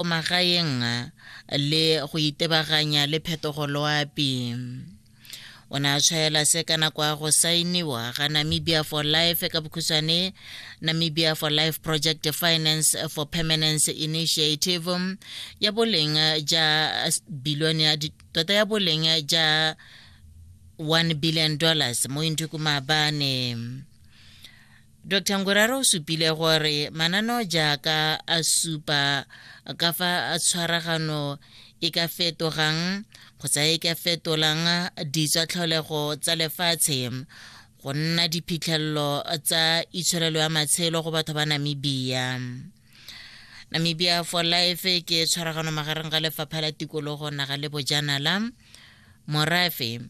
o magaeng le go itebaganya le phetogo loapi o ne a tshwaela se ka nako ya go saeniwa ga namibia for life ka bokhutshwane namibia for life project finance for permanence initiative ya boleng ja bilione ya tota ya boleng ja 1 billion dollars mo inthuku maabane Dr. Nguraro o supile gore mananeo jaaka a supa ka fa tshwaragano e ka fetogang kgotsa e ka fetolang ditswatlholego tsa lefatshe go nna diphitlhelelo tsa itsholelo ya matshelo go batho ba Namibia. Namibia for Life ke tshwaragano magareng ga lefapha la tikologo naga le bojanala morafe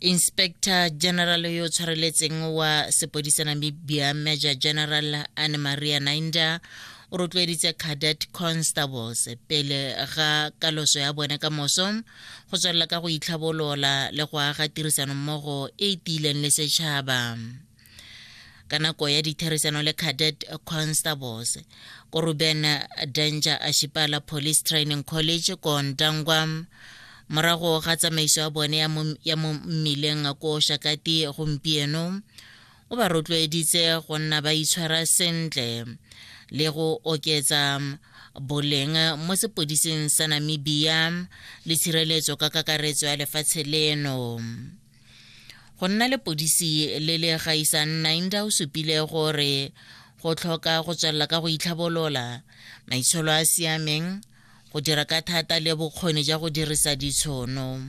inspector general yo o tshwareletseng wa sepodisa namibia major general anne maria nainda o rotloeditse cadet constables pele ga kaloso ya bone ka moso go tswelela ka go itlhabolola le go aga tirisanommogo e e tiileng le setšhaba ka nako ya ditherisano le cadet constables ko ruben danger ashipala police training college ko ntangwa morago ga tsamaiso ya bone ya mo mmileng ko shakati gompieno o ba rotloeditse go nna ba itshwara sentle le go oketsa boleng mo sepodising sa namibia le tshireletso ka kakaretso ya lefatshe leno go nna lepodisi le le gaisang nainda o supile gore go tlhoka go tswelela ka go itlhabolola maitsholo a siameng go dira ka thata le bokgoni ja go dirisa ditshono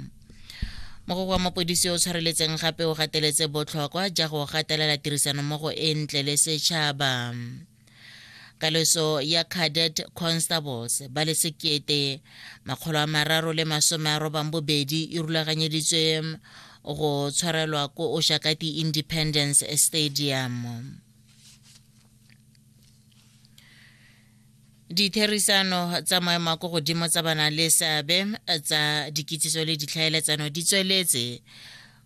mogoko wa mapodisi o tshwareletseng gape o gateletse botlhokwa ja go gatelela tirisanommogo e ntle le setšhaba kaloso ya cadet constables ba le sekete makgolo a mararo le masome a robang bobedi e rulaganyeditswe go tshwarelwa ko oshakati independence stadium ditherisano tsa maemo a ko godimo tsa bana le seabe tsa dikitsiso le ditlhaeletsano di tsweletse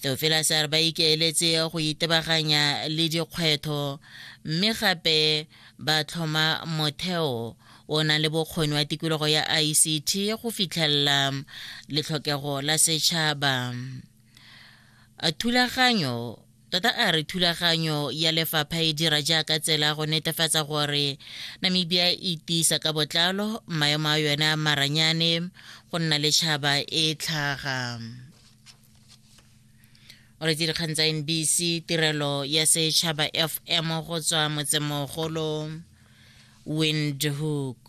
Theofelase a re ba ikaeletse go itebaganya le dikgwetho mme gape ba tlhoma motheo o nang le bokgoni wa tikologo ya ICT go fitlhelela letlhokego la setšhaba. Thulaganyo Tota a re thulaganyo ya lefapha e dira jaaka tsela go netefatsa gore Namibia e tiisa ka botlalo maemo a yone a maranyane go nna le tšhaba e tlhaga o retse dikgang tsa nbc tirelo ya setšhaba fm go tswa motsemogolo windhoek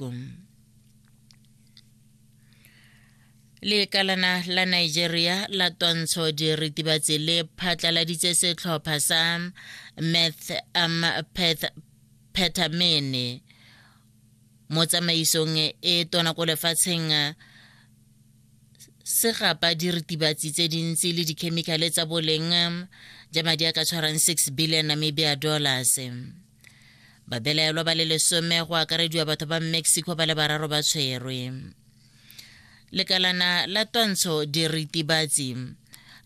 lekalana la nigeria la twantsho diritibatsi le phatlaladitse setlhopha sa meth um, peth phethamene mo tsamaisong e tona ko lefatsheng se gapa diritibatsi tse dintsi le dikhemikhale tsa boleng ja madi a ka tshwarang 6 billion namibia dollars babelaelwa ba le lesome go akarediwa batho ba mexico ba le bararo ba tshwerwe lekalana la twantsho diritibatsi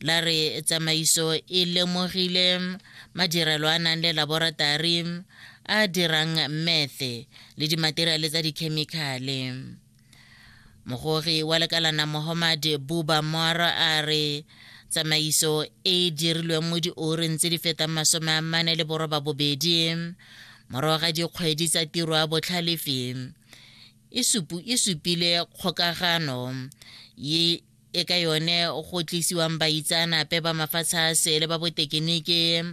la re tsamaiso e lemogile madirelo a nang le laboratari a dirang methe le dimateriale tsa dikhemikhale mogogi wa lekalana mohammad buba mora a re tsamaiso e e dirilweng mo dioreng tse di fetang masome a mane le boroba bobedi morago ga dikgwedi tsa tiro a botlhalefi e supu e supile kgokagano ye e ka yone go tlisiwang baitsaanape ba mafatshe a sele ba botekeniki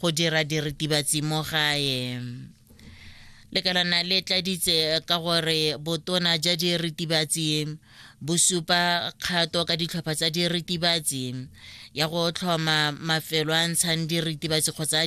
go dira diritibatsi mo gae lekalana le tladitse ka gore botona ja diritibatsi bo supa kgato ka ditlhopha tsa diritibatsi ya go tlhoma mafelo a ntshang diritibatsi kgotsa